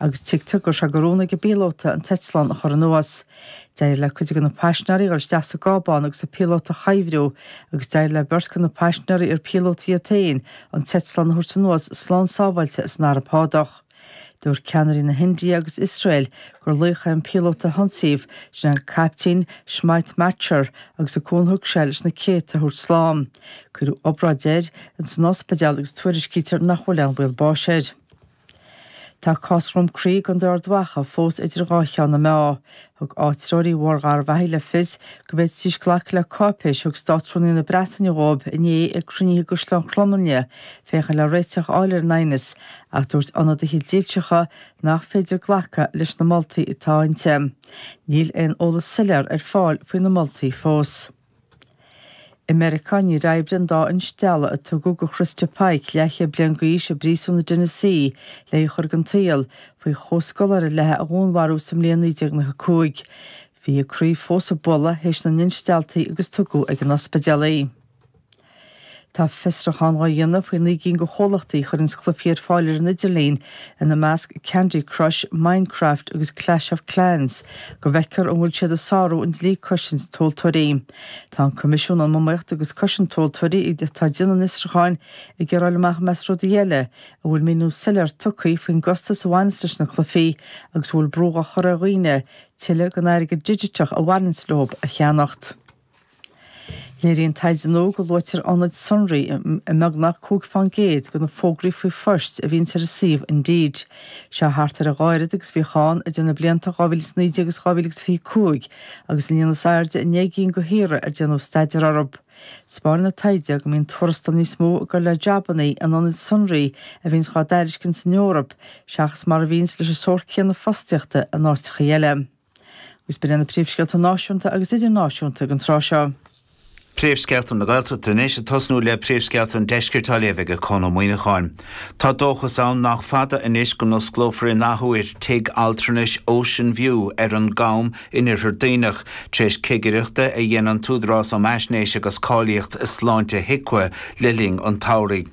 agus tuigtear go raibh sé de rún ag an bpíolóta an t-eitleán a chur anuas. D'éirigh le cuid de na paisnéirí dul isteach sa gcábán agus an píolóta a chuibhriú, agus d'éirigh le beirt de na paisnéirí ar píolótaí iad féin an t-eitleán a thabhairt anuas slán sábháilte san Araib Shádach. Dúirt ceannairí na hIndia agus Iosrael gur laoch é an píolóta a hionsaíodh, sin an Caiptín Smit Machhar, agus an cúnamh a thug sé leis na céadta a thabhairt slán. Cuireadh obráid air in san ospidéal agus tuairiscítear nach bhfuil aon bhaol báis air. Tá cás Dhroim Crí i gContae Ard Mhacha fós idir dhá cheann na meá. Thug áitreoirí Bhóthar Gharbhachaidh le fios go bhféadfaidís glacadh le cáipéis a thug Státrúnaí na Breataine dhóibh inné ag cruinnithe i gCaisleán Chromghlinne féachaint le réiteach a fháil ar an aighneas ach dúirt ionadaithe dílseacha nach féidir glacadh leis na moltaí atá ann. Níl aon eolas soiléir ar fáil faoi na moltaí fós. I Meiriceá, níor oibrigh an dá instealladh a tugadh do Christa Pike leathchéad bliain d'aois i bpríosún i dTennessee, le í a chur den tsaol, faoi chomhscoláire léithe a dhúnmharú sa mbliain 1995. Bhí a croí fós ag bualadh th'éis na n-instealltaí agus tugadh ag an ospidéal í. Tá fiosrúchán á dhéanamh faoi naoi gcinn de chomhlachtaí a chuireanns cluichí ar fáil ar an idirlíon, ina measc Candy Crush, Minecraft agus Clash of Clans, go bhfeicfear an bhfuil siad ag sárú an dlí cosaint tomhaltóirí. Tá an Coimisiún um Iomaíocht agus Cosaint Tomhaltóirí, atá ag déanamh an fhiosrúcháin, ag iarraidh a fháil amach i measc rudaí eile an bhfuil míniú soiléir tugtha faoin gcostas a bhaineas leis na cluichí agus an bhfuil brú á chur ar dhaoine tuilleadh den airgead digiteach a bhaineas leo a cheannacht. Léiríonn taighde nua go luaitear ionaid sonraí i mbeagnach cúig fán gcéad de na fógraí faoi phoist a bhíonn ar an suíomh Indeed. Seo thart ar a dhá oiread agus a bhíodh ann idir na blianta 2019 agus 2025 agus an líon is airde i ndeich gcinn de thíortha ar déanadh staidéar orthu. Spáineann an taighde go mbíonn tuarastal níos mó ag dul le jabanna in ionaid sonraí a bhíonns dhá dtairiscint san Eoraip seachas mar a bhíonns leis an sórt céanna fostaíochta in áiteachaí eile. Is b'in iad na príomhscéalta náisiúnta agus idirnáisiúnta ag an tráth seo. Príomhscéalta na Gaeltachta anois, ag tosnú le príomhscéalta an Deiscirt á léamh aige Conn Ó Muíneacháin. Tá dóchas ann nach fada anois go n-osclófar in athuair tigh altranais Ocean View ar an gCam in Iarthar Duibhneach, tar éis cigireachta a dhein an tÚdarás um Fhaisnéis agus Cáilíocht Sláinte, HIQA, le linn an tsamhraidh.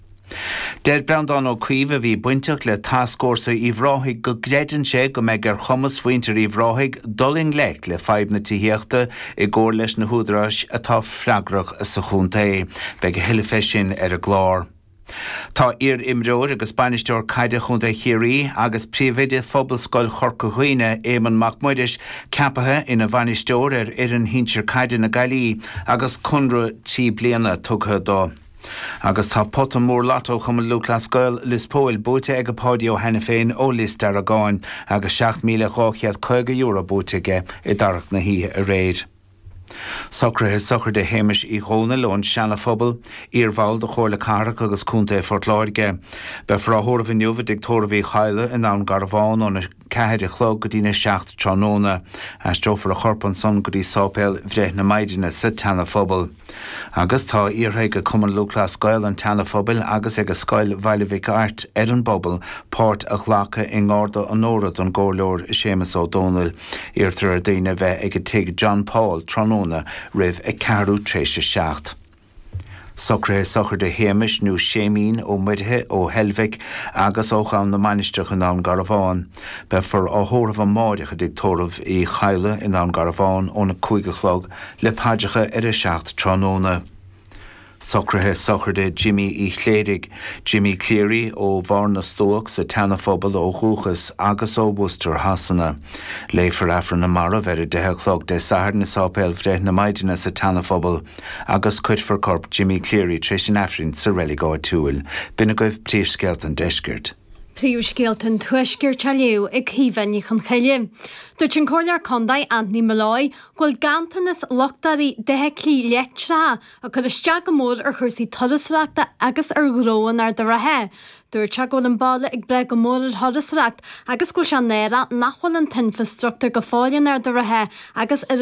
Deir Breandán Ó Caoimh, a bhí bainteach le tascfhórsa Uíbh Ráthaigh, go gcreideann sé go mbeidh ar chumas mhuintir Uíbh Ráthaigh dul i ngleic le fadhb na tithíochta i gcomhar leis na húdaráis atá freagrach sa chontae. Beidh a thuilleadh fé sin ar an gclár. Tá iar-imreoir agus bainisteoir caide Chontae Chiarraí agus príomhoide Phobalscoil Chorca Dhuibhne, Éamonn Mac Muiris, ceapaithe ina bhainisteoir ar fhoireann shinsir caide na Gaillimhe agus conradh trí bliana tugtha dó. Agus tá pota mór Lotto Chumann Lúthchleas Gael, Lios Póil, buaite ag Páidí Ó hAiniféin ó Lios Deargáin agus €7,250 buaite aige i dtarrac na hoíche aréir. Socruithe sochraide Shéamais Uí Dhomhnaill ón Seana-Phobal, iar-bhall de Chomhairle Cathrach agus Contae Phort Láirge. Beifear á thórramh inniu i dTigh Tórraimh Uí Chadhla i nDún Garbhán óna. ceathair a chlog go dtí'n a seacht tráthnóna. Aistreofar a chorp ansan go dtí sáipéal Bhreith na Maighdine sa tSeana-Phobal. Agus tá iarrtha ag Cumann Lúthchleas Gael an tSeana-Phobail agus ag Scoil Bhaile Mhic Airt ar an bpobal páirt a ghlacadh i ngarda onóra don gComhairleoir Séamus Ó Domhnaill. Iarrtar ar daoine a bheith ag Tigh John Paul tráthnóna roimh a ceathrú t'réis a seacht. Socruithe sochraide Shéamais nó Séimín Ó Muirithe, ó Heilbhic agus ó Dhún na Mainistreach i nDún Garbhán. Beifear á thórramh amáireach i dTigh Tórraimh Uí Chadhla i nDún Garbhán óna cúig a chlog le paidreacha ar a seacht tráthnóna. Socruithe sochraide Jimmy Uí Chléirigh, Jimmy Cleary, ó Bharr na Stuac sa tSeana Phobal ó dhúchas agus ó Worcester Shasana. Léifear Aifreann na Marbh ar a deich a chlog Dé Sathairn i Sáipéal Bhreith na Maighdine sa tSeana Phobal. agus cuirfear corp Jimmy Cleary tar éis an Aifrinn sa reilig áitiúil. B'in agaibh Príomhscéalta an Deiscirt. Príomhscéalta an Tuaiscirt á léamh ag Caoimhe Ní Chonchoille. Dúirt an Comhairleoir Contae Anthony Molloy go bhfuil ganntanas luchtáirí d'fheithiclí leictreacha ag cur isteach go mór ar chúrsaí turasóireachta agus ar ghnó in Ard an Rátha. Dúirt sé go bhfuil an baile ag brath go mór ar thurasóireacht agus go bhfuil sé náireach nach bhfuil an t-infreastruchtúr go fóill in Ard an Rátha agus ar